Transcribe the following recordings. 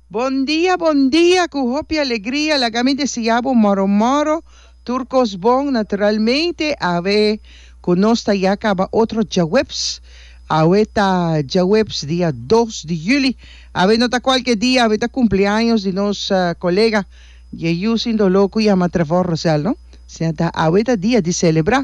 Bon dia bon dia cu hopi alegria laga mi desia bo moro moro tur cos bon naturalmente awe cu nos ta ya caba otro djaweps awe ta djaweps dia dos di juli awe no ta cualke dia awe ta cumpleaños di nos colega dje yu sin dolo cu yama Trevor Rosel no siña ta awe ta dia di celebra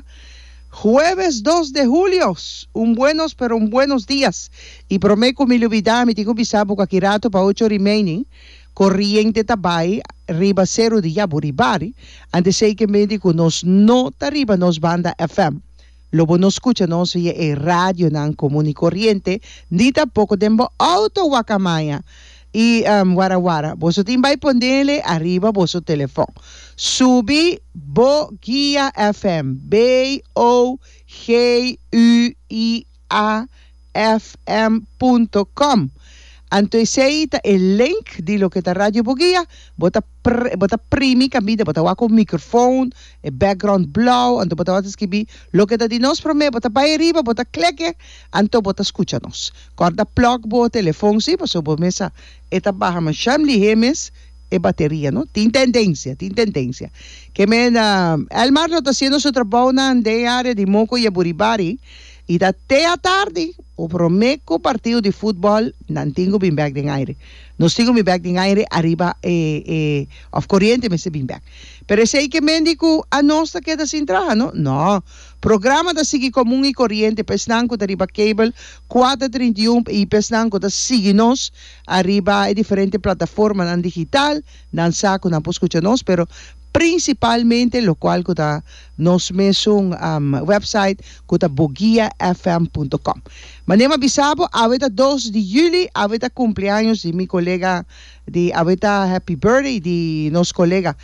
hueves dos de julio un buenos pero un buenos dias. I prome ku mi lubidá mi tin ku bisa buka ki ratu pa ocho remaining koriente ta bai riba seru di Yaburi Bari antes esei ke menti ku nos no ta riba nos banda FM lo bo no skucha nos via e radionan komo ni koriente ni tampoko den bo outo wakamaya i wara wara boso tin bai ponele ariba boso telefon subi bo guia FM BOGUIA. www.radiobugia.afm.com. Anto esei ta e link di loke ta Radio Bugia. Bo ta pr bo ta primi kabida, bo ta wak un microfoon, e background blou, anto bo ta wak ta skibi loke ta di nos prome, bo ta bai ariba, bo ta kleke, anto bo ta skucha nos. Kòrda plòg bo telefon si, pasobra bo mes sa e ta baha masha lihé mes e bateria, no? Tin tendensia, tin tendensia. Ke men Elmar lo ta hasiendo su trabounan den e área di Moco y Aburibari. I ta te atardi ku promé ku partido di futbòl nan tin ku bin bèk den aire. Nos tin ku bin bèk den aire ariba e e òf koriente mester bin bèk. Pero esei ke mendi ku anos ta keda sin traha, no? Nò. Programa ta sigui komun i koriente pa esnan ku ta riba kabel kuater trinta i un i pa esnan ku ta sigui nos ariba e diferente plataformanan digital, nan sa ku nan por skucha nos, pero prinsipalmente lokual ku ta. Nos mesun website cu ta boguiafm.com. Manera ma bisa bo, awe ta dos di juli, awe ta cumpleaños di mi colega di, awe ta happy birthday di nos colega,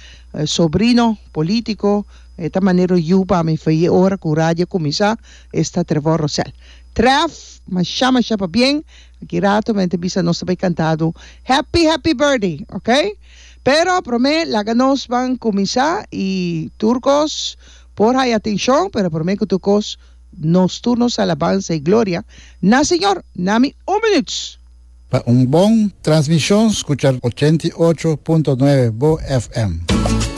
sobrino, politico, e ta manero yu pa mi fin e ora cu radio cuminsa, esta Trevor Rosel. Trev, masha masha pabien, aki rato men ta bisa nos ta bay cantado happy happy birthday, ok. Pero prome laga nos ban kuminsá i tur kos por haya atenshon, pero prome ku tur kos nos tur nos alabansa i gloria na Señor. Na mi un minüts. Pa un bon transmishon skucha ochenta i ocho punto nuebe bo FM.